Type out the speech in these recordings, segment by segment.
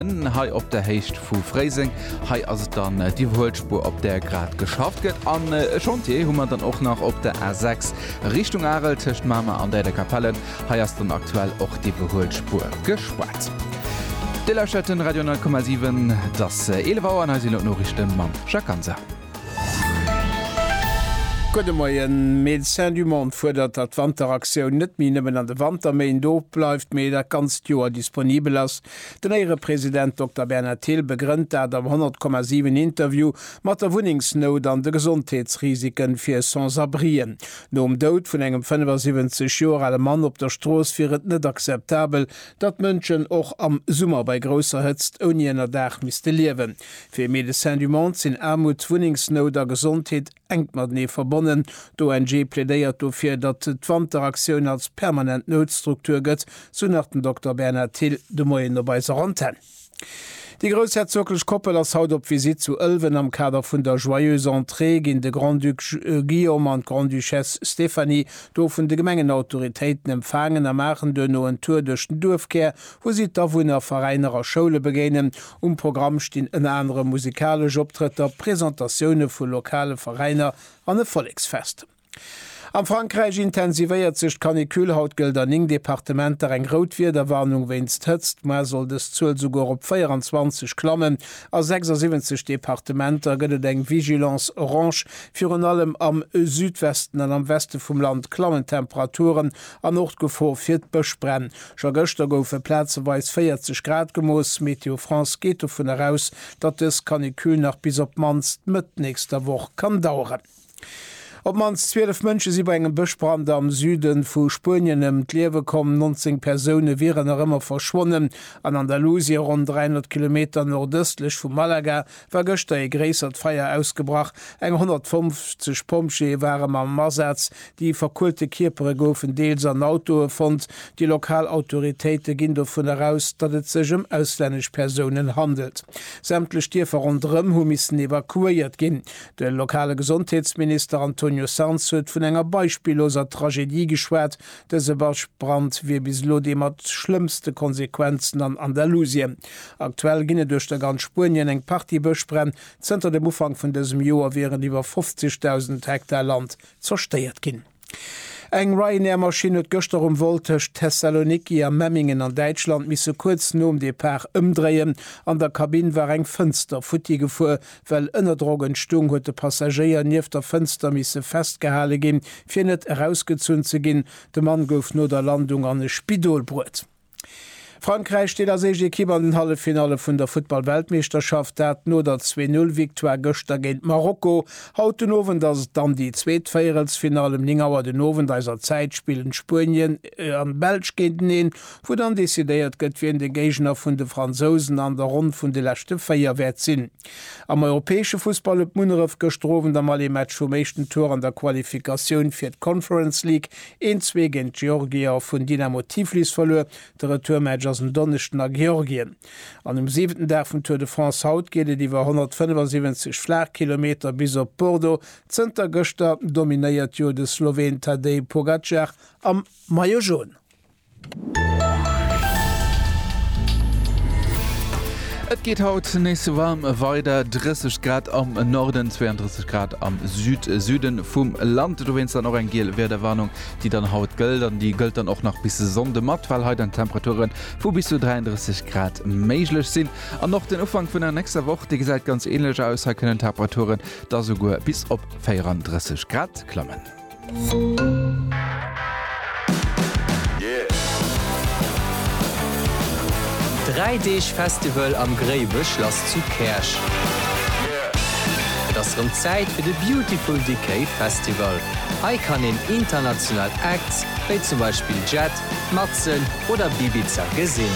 Hei op der Héicht vu Fréiseng. Hei ass et dann déi iwwerhuelt Spuer op där grad geschafft gëtt. An e Chantier hu mer dann och nach op der A 6 Richtung Arel tëscht Mamer an Däiderkapellen. Hei ass dann aktuell och d'iwwerhuelt Spuer gespaart. Dir lauschtert den Radio 9,7. Et ass 11 Auer an hei sinn elo d'Noriichte mam Jacques Ganser. Gudde Moien. Médecins du Monde fuerdert, datt d'Wanteraktioun net méi nëmmen an de Wanterméint ofbleift, mee dat ganzt Joer disponibel ass. Den Éierepresident Dokter Bernhard Thill begrënnt dat am 100,7 Interview mat der Wunnengsnout an de Gesondheetsrisike fir Sans-abrien. Nom Doud vun engem 75 Joer ale Mann op der Strooss wier et net akzeptabel, datt Mënschen och am Summer bei grousser Hëtzt ouni Ënnerdaach misste liewen. Fir Médecins du Monde sinn Aarmut, Wunnengsnout a Gesondheet. Enk matenee verbonnen. D'ONG plädéiert dofir, datt d'Wanteraktioun als permanent Noutstruktur gëtt, sou nach den Dokter Bernhard Thill de Moien op eiser Antenn. Déi groussherzoglech Koppel ass haut op Visitt zu Ëlwen. Am Kader vun der Joyeuse Entrée ginn de Grand-Duc Guillaume an d'Grande-Duchesse Stéphanie do vun de Gemengenautoritéiten empfaangen a maachen duerno en Tour duerch den Duerfkär, wou si d'Awunner, Veräiner a Schoule begéinen. Um Programm stinn ënner anerem musikalesch Optrëtter, Presentatioune vu lokale Veräiner an e Volleksfest. Am Frankräich intensivéiert sech d'Canicule. Haut gëllt an 9 Departementer eng rout Wiederwarnung wéinst Hëtzt. D'Moar soll dës Zuel souguer op 24 klammen. A 76 Departementer gëtt et eng Vigilance orange. Virun allem am Südwesten an am Weste vum Land klammen d'Temperaturen an och d'Gefor fir d'Bëschbränn. Scho gëschter goufe plazeweis 40 Grad gemooss. Météo France geet dovun eraus, datt dës Canicule nach bis op d'mannst Mëtt nächster Woch kann daueren. Op d'mannst 12 Mënsche si bei engem Bëschbrand am Süde vu Spuenien ëm d'Liewe komm. 19 Persoune wieren nach ëmmer verschwonnen. An Andalusien, ronn 300 Kilometer nordëstlech vu Malaga, war gëschter ee gréissert Feier ausgebrach. Eng 150 Pompjeeë ware mam Asaz. Déi verkuelte Kierpere goufen deels an Autoe fonnt. Déi lokal Autoritéite ginn dovun eraus, datt et sech ëm auslännesch Persounen handelt. Sämtlech Dierfer ronderëm hu missen evakuéiert ginn. De lokale Gesondheetsminister Antonio Sanz huet vun enger beispilloser Tragedie geschwat. Dëse Bëschbrand wier bis elo dee mat schlëmmste Konsequenzen an Andalusien. Aktuell ginn et duerch der ganz Spuenien eng Partie Bëschbränn. Zënter dem Ufank vun dësem Joer wieren iwwer 50.000 Hektar Land zerstéiert ginn. Eng Ryanair-Maschinn huet gëschter um Vol tëscht Thessaloniki a Memmingen an Däitschland misse kuerz nom Depart ëmdréien. An der Kabinn war eng Fënster futti gefuer. Well Ënnerdrock entstung, huet de Passagéier nieft der Fënster misse festgehale ginn, fir net erausgezunn ze ginn. De Mann gouf no der Landung an e Spidol bruet. Frankräich steet als éischt Ekipp an den Halleffinalle vun der Futtball-Weltmeeschterschaft, dat no der Zwee-Null-Victoire gëschter géint Marokko. Haut den Owend ass et dann déi zweet Véierelsfinall. Ëm 9 Auer den Owend eiser Zäit spillen Spuenien an d'Belsch géinteneen, wou dann decidéiert gëtt, wien de Géigner vun de Fransousen an der Ronn vun de leschte 4 wäert sinn. Am europäesche Fussball huet Munneref gëschter Owend am Aller-Match vum éischten Tour an der Qualifikatioun fir d'Conference League een Zwee géint d'Georgier vun Dynamo Tiflis verluer. De Retourmatch ass en Donneschden a Georgien. An um siwenten Dag vum Tour de France haut geet et iwwer 175 Flaachkilometer bis op Bordeaux. Zënter gëschter dominéiert jo de Sloween Tadej Pogacar am Maillot Jaune. Et geet haut nees warm weider, 30 Grad am Norden, 32 Grad am Süd-Süden vum Land. Dowéinst dann och eng giel Wiederwarnung, déi dann haut gëllt an déi gëllt dann och nach bis Sonnde mat, well hei dann Temperature vu bis zu 33 Grad méiglech sinn. An och den Ufank vun der nächster Woch, dee gesäit ganz ähnlech aus. Hei kënnen Temperaturen da souguer bis op 34 Grad klammen. Dräi Deeg Festival am Gréiweschlass zu Käerch. Et ass rëm Zäit fir de Beautiful Decay Festival. Hei kann een international Acts wéi zum Beispill Jet, Matzen oder Bibiza gesinn.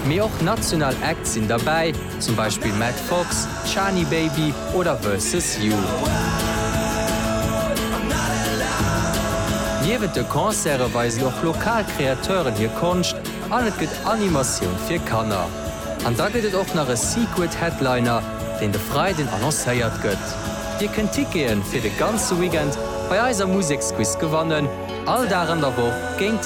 Mee och national Acts sinn derbäi. zum Beispill Matt Fox, Shani Baby oder Versus You. Niewent de Concerte weisen och lokal Kreateuren hir Konscht an et gëtt Animatioun fir Kanner. An da gëtt et och nach e Secret Headliner, deen de Freiden annoncéiert gëtt. Dir kënnt Tickete fir de ganze Weekend bei eiser Museksquiz gewannen, all Dag an der Woch géint.